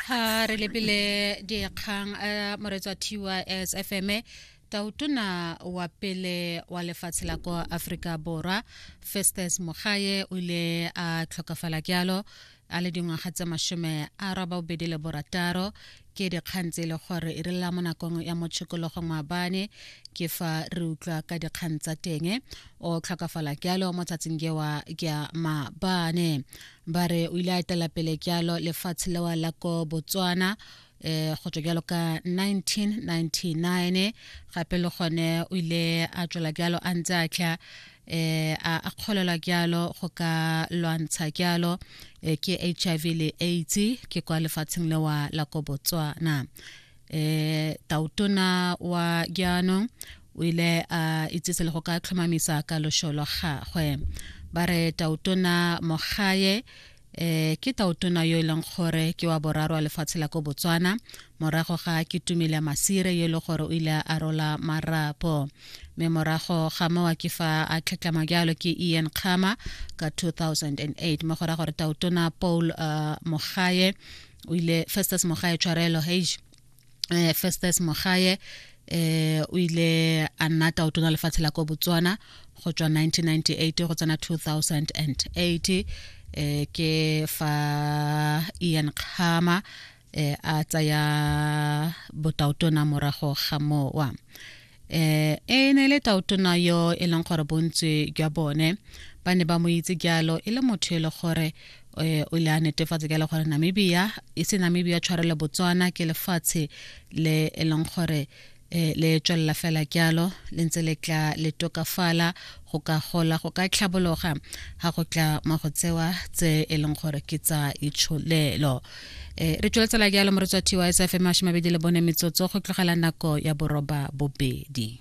ha re lebile dikgang a eh, moretswa thiwa sfm tautona wa pele wa lefatshe la kwa aforika borwa festus mogaye o ile a tlhokafala jalo a le dingwaga tse masome a raba bobedi le borataro ke dikgang tse e le gore e re lela mo nakong ya mo tshokologong maabane ke fa re utlwa ka dikgang tsa teng o tlhokafala jalo mo tsatsing jewa ja maabane ba re o ile a etela pele jalo lefatshe lewa la ko botswana eh go tswa jalo ka 1999 gape le gone o ile a tswela jalo a ntse a tla eh a kgolelwa jalo go ka lwantsha jalo eh, ke HIV le AIDS ke kwa lefatsheng lewa la ko Botswana eh tautona wa jaanong o ile a itsise le go ka tlhomamisa ka lošo lwa gagwe ba re tautona mogaye eh ke tautona yo e leng gore ke wa boraro wa lefatshe la ko botswana morago ga ke tumile masire yo e le gore o ile a rola marapo mme morago ga mowa ke fa a tlhetlama jalo ke ian kgama ka 2008 mo go ra gore tautona paul uh, mogaye o ile festus mogaye tshwarelo hage eh Festus Mogaye eh o ile a nna taotona lefatshe la ko Botswana go tswa 1998 go tsena 2008 eh ke fa Ian Khama eh a tsaya botaotona morago ga mowa eh e ne e le taotona yo e leng gore bontsi jwa bone ba ne ba mo itse jalo e le motho e le gore eh, o ile a netefatsa jalo gore namibia e se namibia tshwarelo botswana ke lefatshe le e leng gore eh, le tswelela fela jalo le ntse le tla le tokafala go ka gola go ka tlhabologa ga go tla mo go tsewa tse e leng gore ke tsa itsholelo eh, re tsweletsa la ke ya lomoretswa tysfm a shomabedi le bone metsotso go tlogela nako ya boroba bobedi